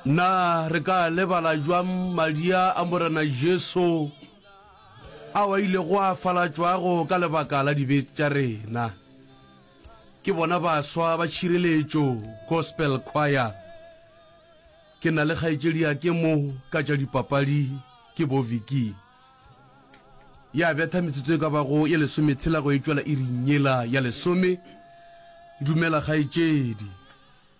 Na re ka a lebala jwang madia a Morena Jesu ao a ilego a falatšwago ka lebaka la dibe tša rena? Ke bona baswa ba tšhireletšo Gospel Choir. Ke na le kgaetšediake mo ka tša dipapadi ke bo Vicky. Ya betha metsotso e ka bago ye lesometshela go e tšwela iring yela ya lesome. Dumela kgaetšedi.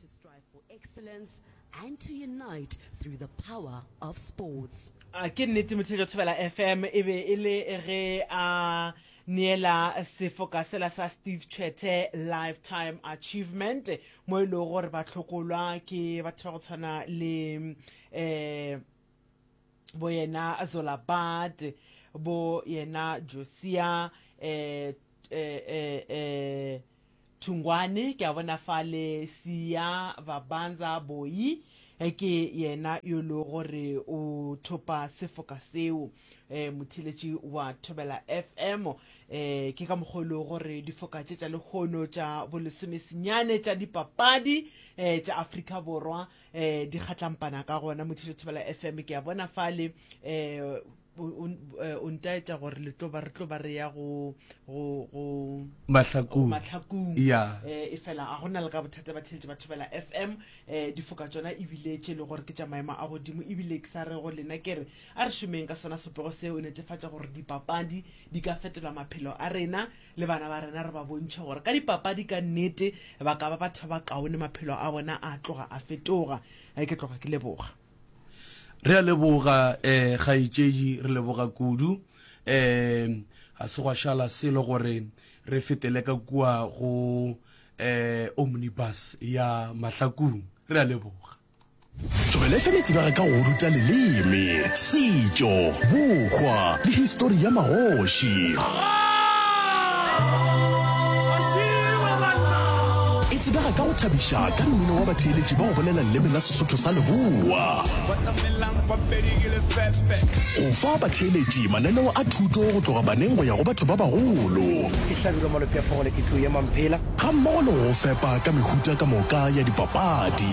To strive for excellence and to unite through the power of sports. A ke nnete Motheo Thobela FM e be e le ge a neela sefoka sela sa Steve Tshwete Lifetime Achievement mo e lego gore ba tlhokolwa ke batho ba go tshwana le eh bo yena Zola Bad bo yena Josia eh eh eh, eh Thungwane ke a bona fale Siya Vabanza Boyi eh, ke yena yo lo gore o thopa sefoka seo eh, motheletši wa Thobela FM eh, ke ka mokgwa e lego gore difoka tše tša lekgono tša bolesomesenyane tša dipapadi eh, tša Afrika Borwa eh, di kgatlampana ka gona motheletši Thobela FM ke a bona fale eh, O, o, eh, o ntaetša gore le tlo ba re tlo ba re ya go go go mahlakong mahlakong ya eh, e fela ga gona le ka bothata ba theletše ba thobela fm eh, difoka tsona ebile tše e le gore ke tša maemo a godimo ebile ke sa re go lena ke re a re šomeng ka sona sepego seo netefatša gore dipapadi di ka fetola maphelo a rena le bana ba rena re ba bontšhe gore ka dipapadi ka nnete ba ka ba batho ba kaone maphelo a bona a tloga a fetoga Eh, ke tloga ke leboga Re a leboga eh kgaetšedi re leboga kudu eh ga se gwa šala selo gore re fetele ka kua go eh omnibus ya mahlakung re a leboga. Tlogele fela tsebega ka go ruta leleme, setšo, bokgwa le histori ya magoši. Tsebega ka go thabiša ka mmino wa batheeletši ba go bolela leleme la Sesotho sa Leboa. Go fa batheeletši mananeo a thuto go tloga baneng go ya go batho ba bagolo. Ga mmogo le go go fepa ka mehuta ka moka ya dipapadi.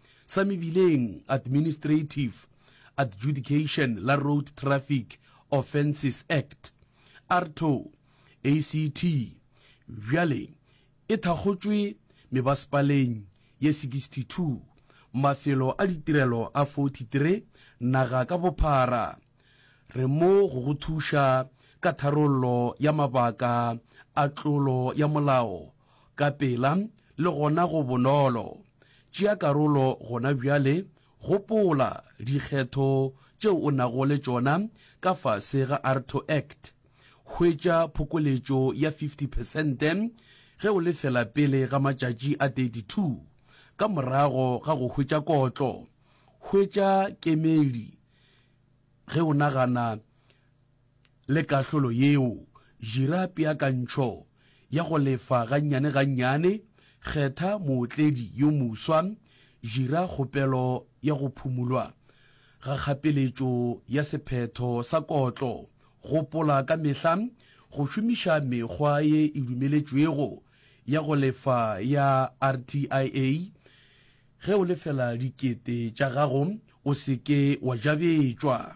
sa mebileng, Administrative Adjudication la Road Traffic Offences Act, ARTO, ACT, bjale e thakgotšwe mebasepaleng ye 62, mafelo a ditirelo a 43 naga ka bophara. Re mo go go thuša ka tharollo ya mabaka a tlolo ya molao ka pela le gona go bonolo. Tšea karolo gona bjale, gopola dikgetho tšeo o nago le tšona ka fase ga ARTO Act. Hwetša phokoletšo ya 50 phesente ge o lefela pele ga matšatši a 32 ka morago ga go hwetša kotlo. Hwetša kemedi ge o nagana. Le kahlolo yeo, jira peakantšho ya go lefa gannyane-gannyane, kgetha mootledi yo moswa, jira kgopelo ya go phumulwa ga kgapeletšo ya sephetho sa kotlo, gopola ka mehla go šomiša mekgwa ye e dumeletšwego ya go lefa ya RTIA. Ge o lefela dikete tša gago, o se ke wa jabetšwa.